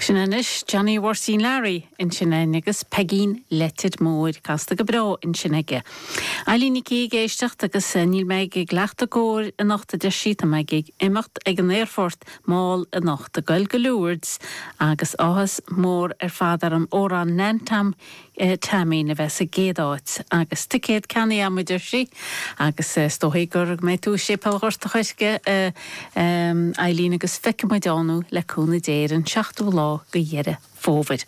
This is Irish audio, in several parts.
Sin anois Johnny Mháirtín Learaí ansin agus Peigín Leitir Móir casta go breá ansin aige. Eilín Nic Aoidh ag éisteacht agus níl mé ag leacht a gcomhair anocht a deir sí, tá mé ag imeacht ag an aerfort mall anocht, ag goil go Lourdes agus áthas mór ar fad orm amhrán Nan Tom Teaimín a bheith sa gcéad áit. Agus ticéad ceannaithe a'm, a deir sí. Agus is dóigh go mbeidh tú i Séipéal Ghort a' Choirce, a Eilín, agus feicfidh muid ann thú, le cúnamh Dé, ar an seachtú lá go Dheireadh Fómhair.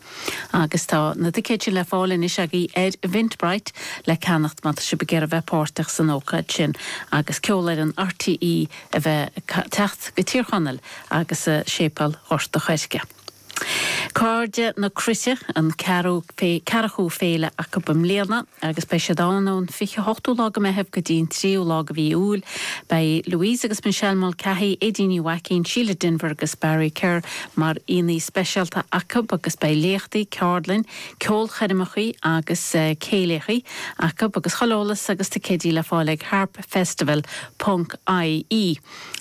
Agus tá na ticéid sin le fáil anois agaí ar Eventbrite le ceannacht má tá sibh ag iarraidh bheith páirteach san ócáid sin. Agus Ceolfhoireann RTÉ a bheith teacht go Tír Chonaill agus Séipéal Ghort a' Choirce. Cairde na Cruite an ceathrachú féile acu i mbliana agus beidh siad ann ón 28ú lá go Meitheamh go dtí an 3ú lá go mhí Iúil. Beidh Louise agus Michelle Mulcahy, Éadaoin Ní Mhaicín, Síle Denvir agus Barry Kerr mar aíonna speisialta acu agus beidh léachtaí, ceardlainn, ceolchoirmeacha agus céilíocha acu agus chuile eolas agus ticéidí le fáil ag harpfestival ponc ie.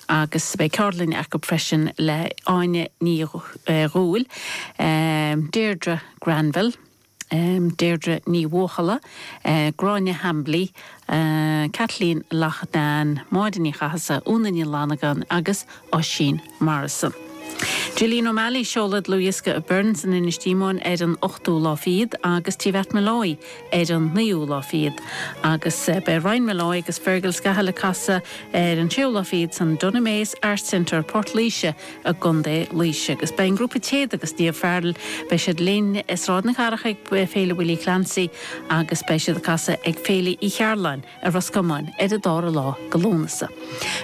agus beidh ceardlainne acu freisin le Áine Ní Dhubhghaill, Deirdre Granville, Deirdre Ní Bhuachalla, Gráinne Hambly, Kathleen Loughnane, Máire Ní Chathasaigh, Úna Ní Fhlannagáin agus Oisín Morrison. Jillian O'Malley, seoladh dlúthdhiosca i Byrne's in Inis Díomáin ar an ochtú lá fichead agus Tigh Mhatt Molloy, ar an naoú lá fichead, agus beidh Ryan Molloy agus Fergal Scahill ag casadh ar an séú lá fichead san Dunamaise Arts Centre, Port Laoise i gContae Laoise. Agus beidh an grúpa Téada agus Niamh Farrell, beidh siad linn i Sráid na Cathrach ag Féile Willie Clancy agus beidh siad ag casadh ag Féile Uí Chearbhalláin, i Ros Comáin, ar an dara lá de Lúnasa.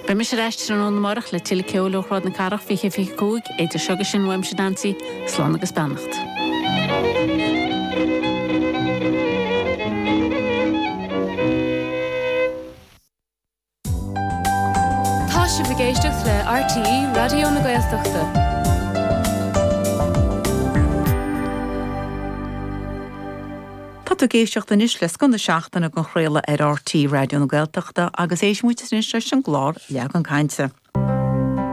Beidh mise ar ais tráthnóna amárach le tuilleadh ceoil ó Shráid na Cathrach 2025. Idir seo agus sin, uaimse, Neansaí, slán agus beannacht. Tá sibh ag éisteacht le RTÉ Raidió na Gaeltachta. Tá tú ag éisteacht anois le scoth na seachtaine den chraoladh ar RTÉ Raidió na Gaeltachta agus éistfidh muid anois leis an gclár Leagan Cainte.